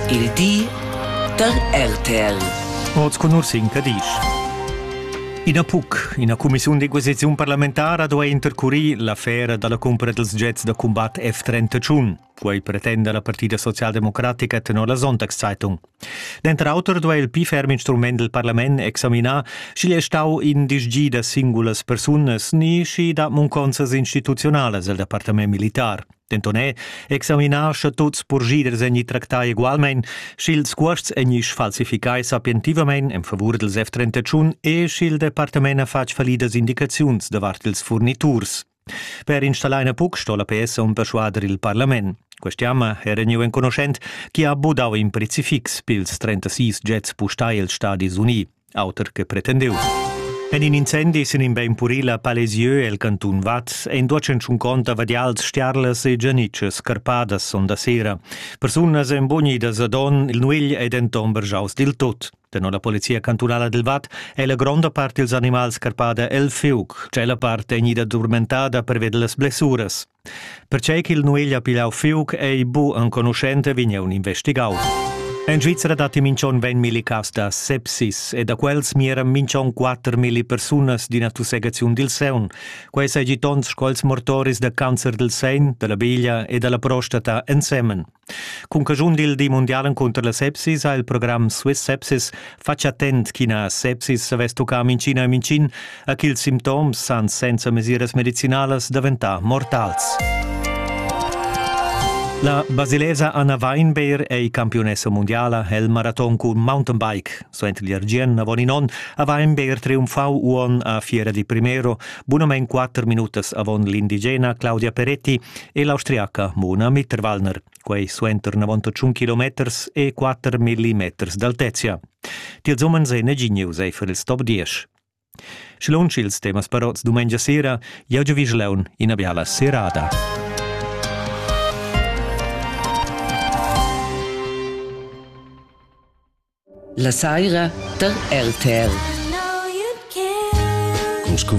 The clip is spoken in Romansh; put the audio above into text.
Il di da RTL. Oz con Ursin Cadisch. Ina PUC, ina cumissiun d'equisiziun parlamentara duai intercurir l'affera dalla cumpra dels jets da combat F-31. Quei pretenda la Partida Socialdemocratica tenor la Sonntagszeitung. Denter auter duai il pli ferm instrument del parlament examinar, sch'igl è stau in disgi da singulas persunas ni schi da munconsas instituzionalas el departament militar. Denton è examinar sche tuts purschiders egni tractai egualmein, sch'ils cuosts egni sfalsificai sapientivamein en favur dils F-31 e sch'il departament ha fatg fallidas indicaziuns davart ils furniturs. Per installar ina PUC sto la PS on perschuader il parlament. Quest'jamma era gneu enconuschent chi ha budau in prezifix pils 36 jets pustai els Stadis Unii. auter che pretendiu. En in incendi sin in bein puril a Palezieux el cantun Vaz ein duacenschun conta vadials stiarlas e gianitschas scarpadas sonda sera. Persunas ein bonidas ad on, il nuegl ei denton bergiaus dil tot. Tenor la polizia cantunala del Vat è la gronda part dils animals scarpada el fiuc, cella part è gnida durmentada per veder las blessuras. Pertgei ch'il nueglia pigliau fiug ei bu enconuschent, vegn eu investigau. En Svizra datti minch'on 20 milli cas da sepsis e da quels mieran minch'on 4 milli persunas d'ina tussegaziun dil seun. Quei seigi tons sco els mortoris da cancer del sein, della biglia e della prostata ensemen. Cun caschun dil di mundial encunter la sepsis ha il program Swiss Sepsis fatg attent ch'ina sepsis savess tuccar minchin e minchin a ch'ils simptoms san senza mesiras medicinalas daventar mortals. La basilesa Anna Weinbeer ei campiunessa mundiala el maraton cun mountainbike. Suenter l'Argien avon in onn ha Weinbeer triumfau uon a Fiera di Primero, bunamein quatter minutas avon l'indigena Claudia Peretti e l'austriaca Mona Mitterwallner, quei suenter 91 kilometers e 4 millimeters d'altezia. Tiels umens ei negin news eifer il stop diesch. Sche lunsch ils temas parots dumengia sera, jau giavischlaun ina biala serada. La saira da RTL.